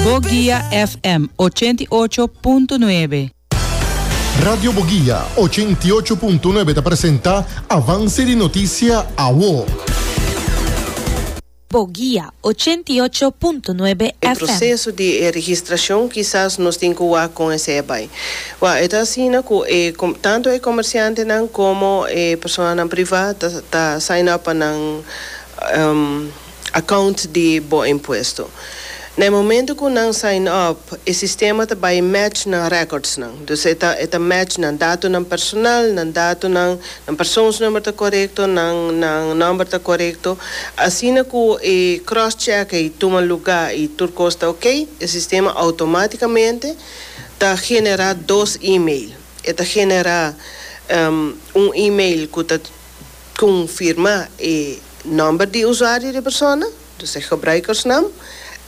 Boguia FM ochenta i ocho punto nuebe. Radio Boguia ochenta i ocho punto nuebe ta presenta Avance di Noticia Awo. Boguia ochenta i ocho punto nuebe E FM. proceso di e registracion kisas nos tin cu wak con esey bay. Wak e ta asina cu e tanto e comerciantenan como e personanan priva ta ta sign up pa nan account di bo impuesto. Na e momento cu nan sign up e sistema ta bay match nan records nan. Dus e ta e ta match nan datonan personal, nan datonan, nan persoonsnumber ta corecto, nan nan number ta corecto. Asina cu e cross check ey tuma lugar y tur cos ta ok, e sistema automaticamente ta genera dos email. E ta genera un email cu ta confirma e. Nomber di usuario di persona, dus e gebruikersnaam,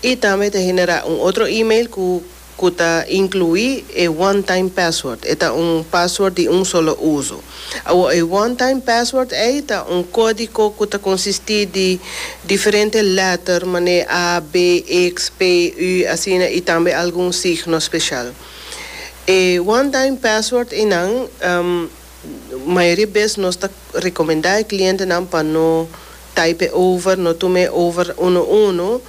i tambe ta generá un otro email ku ku ta inkluí e one time password, e ta un pasword di un solo uso. Awor e one time password ei ta un kódiko ku ta konsistí di diferente lèter manera a, be, eks, pe, ü, asina i tambe algun signo speshal. E one time password einan. Mayoria bes nos ta recomenda e clientenan pa no type over, no tuma e over uno uno,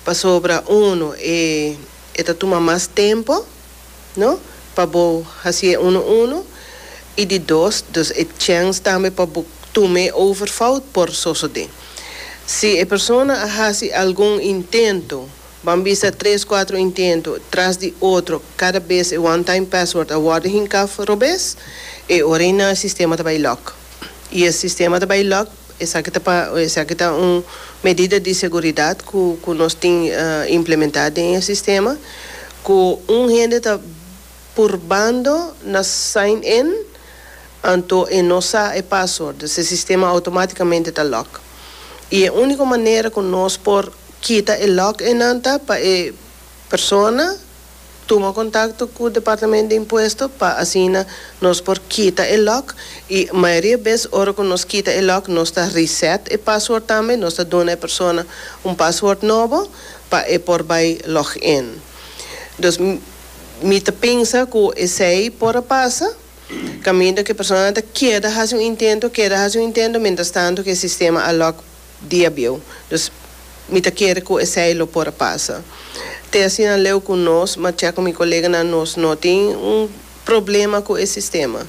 pasobra uno e e ta tuma mas tempo, no, pa bo hasi e uno uno, y di dos, dus e chance tambe pa bo tuma e over fout por sosode. Si e persona a hasi algun intento Ban bisa tres kuatro intento tras di otro kada bes e one time password a worde hinká for robes e ora ei nan e sistema ta bai lock i e sistema ta bai lock esaki ta pa esaki ta un medida di seguridat ku ku nos tin implementá den e sistema ku un hende ta purbando na sign in anto e no sa e password dus e sistema automaticamente ta lock y e unico manera cu nos por kita e lock eynan ta pa e persona tuma contacto cu departamento de impuesto pa asina nos por kita e lock y mayoria bes ora cu nos kita e lock nos ta reset e password tambe nos ta duna e persona un password nobo pa e por bay log in dus. Mi ta pensa ku esei por a pasa, kaminda ku e personanan ta keda hasi un intento, keda hasi un intento, mientras tanto ku e sistema a lòk di abieu. Dus, mi ta kere ku esei lo por a pasa. Te asina leu ku nos, mach'e ku mi koleganan, nos no tin un problema ku e sistema.